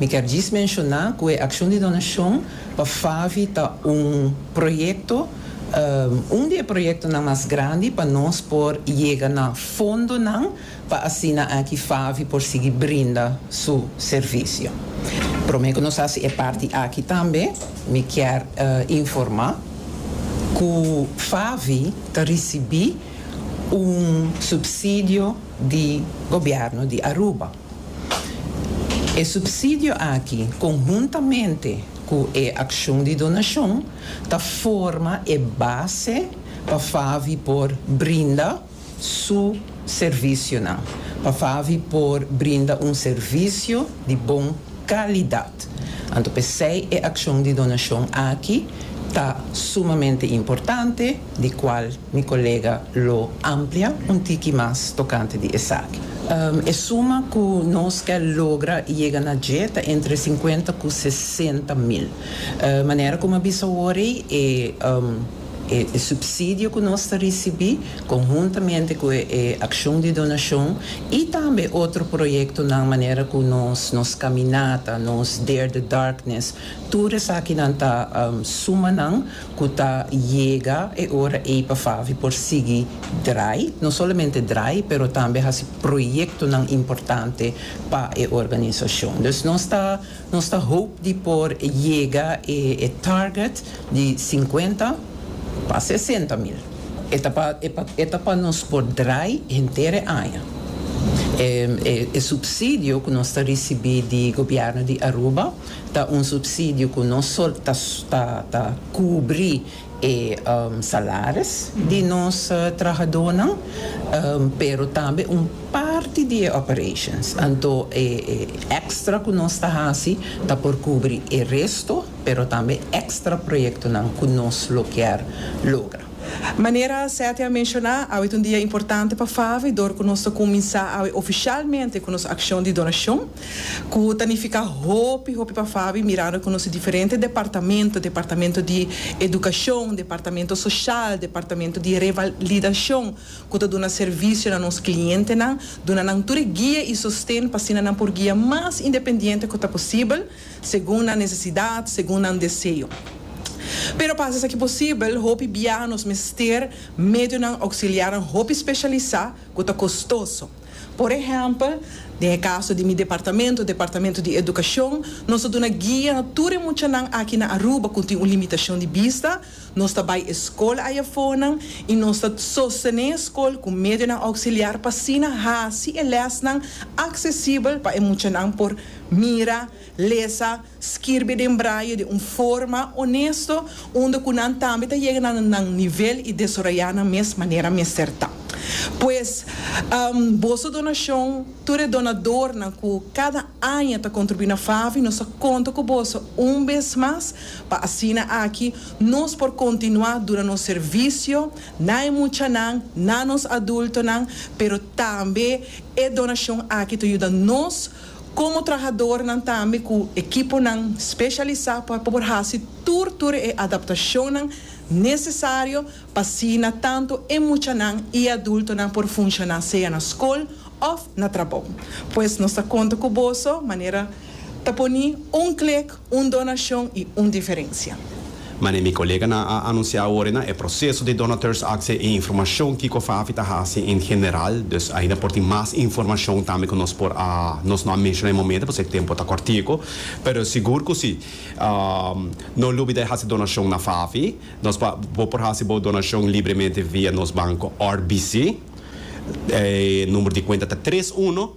Mi kier djis menshoná ku e akshon di donashon pa FAVI ta un proyekto, un di e proyektonan mas grandi pa nos por yega na fondonan pa asina aki FAVI por sigui brinda su servisio. Promé ku nos hasi e parti aki tambe mi kier informá ku FAVI ta risibí un supsidio di gobièrnu di Aruba. E supsidio aki, conhuntamente cu e accion di donacion, ta forma e base pa FAVI por brinda su servicionan, pa FAVI por brinda un servicio di bon calidad. Anto p'esey e accion di donacion aki ta sumamente importante. di cual mi colega lo amplia un tiki mas tocante di esaki. E suma cu nos kel logra y yega na dje ta entre cincuenta cu sesenta mil. Manera cu mi a bisa awor ey, e e subsidio cu nos ta ricibi, conhuntamente cu e accion di donacion y tambe otro proyectonan manera cu nos nos caminata, nos Dare the Darkness, tur esakinan ta suma nan ku ta yega e ora ei pa Favi por sigui drai, no solamente drai pero tambe hasi proyektonan importante pa e organisashon. Dus nos ta nos ta hoop di por yega e e target di sinkuenta pa sesenta mil. E ta pa e pa e ta pa nos por drai henter e aña. E e e supsidio ku nos ta risibí di gobièrnu di Aruba, Ta un subsidio cu no solo ta cubri e salaris di nos trahadonan, pero tambe un parti di e operations. Anto e extra cu nos ta haci ta por cubri e resto, pero tambe extra proyectonan cu nos lo kier logra. Manera Seti a menciona, awe ta un dia importante pa Favi dor cu nos ta cuminsa awe oficialmente cu nos accion di donacion. Cu ta nifica hopi hopi pa Fabi mirando cu nos diferente departamento, departamento di educacion, departamento social, departamento di revalidacion cu ta duna servicio na nos clientenan, duna nan tur e guia y sosten pa asina nan por guia mas independiente cu ta posibel, segun nan necesidad, segun nan deseo. Pero pa haci esaki posibel, hopi biaha nos mester medionan auxiliarnan hopi specialisa cu ta costoso. Por ehèmpel, den e kaso di mi departamento, Departamento di Edukashon, nos a duna guia na tur e muchanan aki na Aruba ku tin un limitashon di bista, nos ta bai e skol aya afornan i nos ta sostené e skol ku medionan ouksiliar pa asina hasi e lèsnan aksesibel pa e muchanan por mira, lesa, Skirbi den braye den un forma onesto unda ku nan tambe ta yega na nan nivel i desaroyá nan mes manera mester ta. Pues, boso donashon, tur e donadornan ku kada aña ta kontribuí na FAVI, nos ta konta ku boso un bes mas pa asina aki nos por kontinuá duna nos servisio na e muchanan, na nos adultonan, pero tambe e donashon aki ta yuda nos. Komo trahadornan tambe ku ekiponan speshalisá por por hasi tur tur e adaptashonnan nesesario pa asina tantu e muchanan i adultonan por funshoná sea na skol òf na trabou. Pues nos ta konta ku boso manera ta poni un klik. Un donashon i un diferensia. Manera mi koleganan a anunsiá awor na e proseso di donateurs akse e informashon kiko Fafi ta hasi en general, dus ainda por tin mas informashon tambe ku nos por a nos no a menshoná e momento pasobra e tempu ta kòrtiku, pero sigur ku si. No lubida e hasi donashon na Fafi. Nos pa bo por hasi bo donashon libremente via nos banko RBC. E number di kuenta ta tres uno.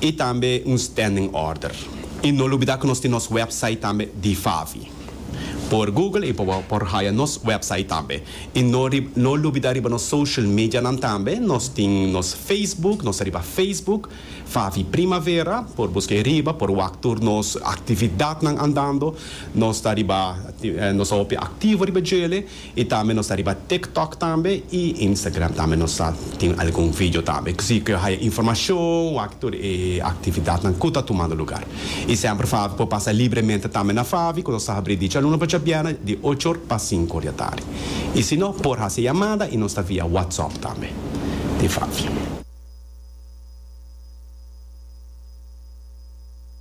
y tambe un standing order. Y no lubida cu nos tin nos website tambe di Favi. Por Google y por haya nos website tambe. Y no no lubida riba nos social medianan tambe, nos tin nos Facebook, nos ta riba Facebook, Favi Primavera, por busca e riba, por wak tur nos actividadnan andando, nos ta riba, nos ta hopi activo riba djele. Y tambe nos ta riba TikTok tambe y Instagram tambe nos ta tin algun video tambe si cu yo haya informacion wak tur e actividadnan cu ta tumando lugar. Y semper Favi por pasa libremente tambe na Favi cu nos ta habri di djaluna pa djabièrnè di ocho or pa sinku or di atardi. Y si no por haci yamada y nos ta via WhatsApp tambe di Favi.